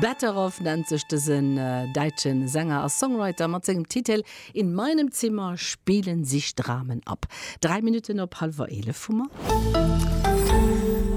Better Off nennt sech dësen däitsche Sänger a Songwriter mat sengem Titel In meinem Zimmer spielen sich Dramen ab. Dräi Minutten op hallwer eelef hu mer.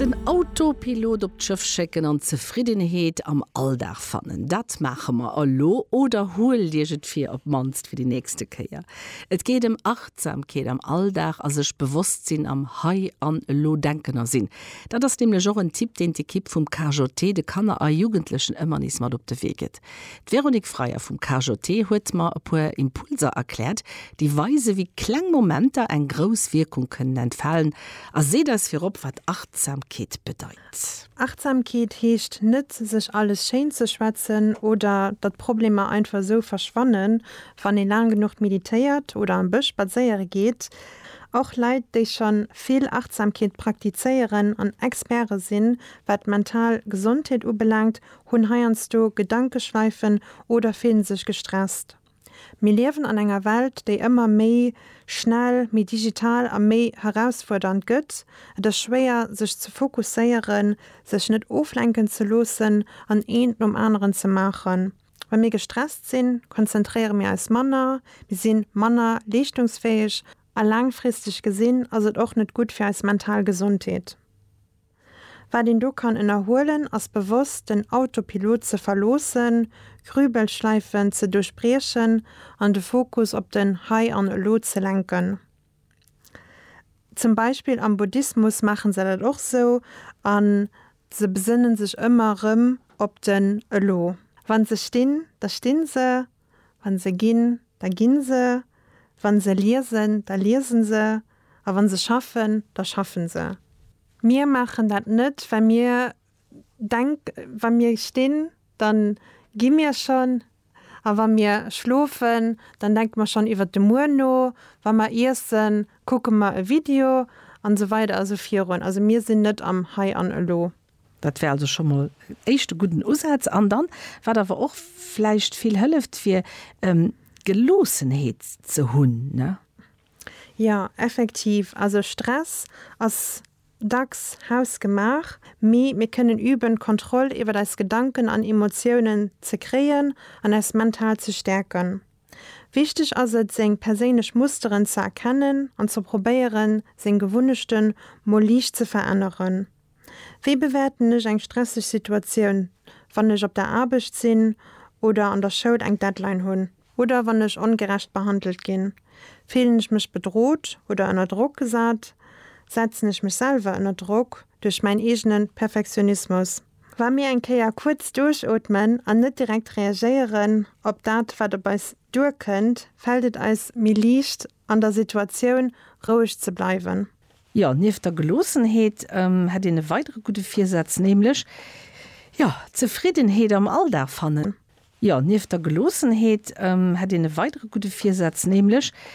Den Autopilot op d'Schëff schécken an Zefriddenheet am Alldag fannen, dat maache mer elo. Oder huelt Iech et vir, op d'mannst fir déi nächste Kéier. Et geet ëm Achtsamkeet am Alldag a sech bewosst sinn am Hei an Elo denken a sinn. Dat ass nämlech och en Tipp, deen d'Ekipp vum KJT de Kanner a Jugendlechen ëmmer nees mat op de Wee gëtt. D'Véronique Freyer vum KJT huet mer e puer Impulser erkläert, déi weisen, wéi kleng Momenter eng grouss Wierkung kënnen entfalen a seet eis virop, wat Achtsamkeet bedeit. Achtsamkeet heescht net, sech alles schéin ze schwätzen oder datt Problemer einfach esou verschwannen, wann ee laang genuch meditéiert oder am Bësch spadséiere geet. Och Leit, déi schonn vill Achtsamkeet praktizéieren an Experte sinn, wat d'mental Gesondheet ubelaangt, hunn heiansdo Gedankeschweifen oder fillen sech gestresst. Mir liewen an enger Welt, déi ëmmer méi schnell, méi digital a méi herausfuerdernd gëtt. Et ass schwéier, sech ze fokusséieren, sech net oflenken ze loossen an eent nom aneren ze maachen. Wa mir gestresst sinn, konzentréiere mir eis manner, mir si manner leeschtungsfäeg a laangfristeg gesinn ass et och net gutt fir eis mental Gesondheet. Wat een do kann ënnerhuelen, ass bewosst den Autopilot ze verloossen, Grübelschleifen ze duerchbriechen an de Fokus op den Hei an Elo ze lenken. Zum Beispill am Buddhismus maachen se dat och sou an se besënnen sech ëmmer rëm op den Elo. Wann se stinn, da stinn se, wann se ginn, da ginn se, wann se liesen, da liesen se a wann se schaffen, da schaffen se. Mir maachen dat net well mir Denkt, Wa mir stinn, da gi mir schonn. A wa mir schlofen, dann denke mer schonn iwwer de Muer no. Wa mer iessen, kucke mer e Video an esou weider a sou virun. Also mir sinn net am Hei an Elo. Dat wär also scho mol en éischte gudden Usaz. An dann, wat awer och vläicht vill hëlleft, wier Geloossenheet ze hunn. Jo, effektiv. Also Stress ass dacks hausgemaach, mee mir kënnen üben, d'Kontroll iwwer eis Gedanken an Emotiounen ze kréien an eis mental ze stäerken. Wichteg ass et, seng perséinlech Musteren ze erkennen an ze probéieren, seng Gewunnechte mol liicht ze veränneren. Wéi bewäerten ech eng stresseg Situatioun, wann ech op der Aarbecht sinn oder an der Schoul eng Deadline hunn? Oder wann ech ongerecht behandelt ginn, fillen ech mech bedrot oder ënner Drock gesat, setzen ech mech selwer ënner Drock duerch mäin eegene Perfektionismus. Wa mir eng Kéier kuerz duerchootmen an net direkt reagéieren op dat, wat op eis duerkënnt, fält et eis méi liicht, an der Situatioun roueg ze bleiwen. Jo, nieft der Geloossenheet hätt een e weidere gudde Virsaz, nämlech, jo, Zefriddenheet am Alldag fannen. Jo, nieft der Geloossenheet hätt een e weidere gudde Virsaz, nämlech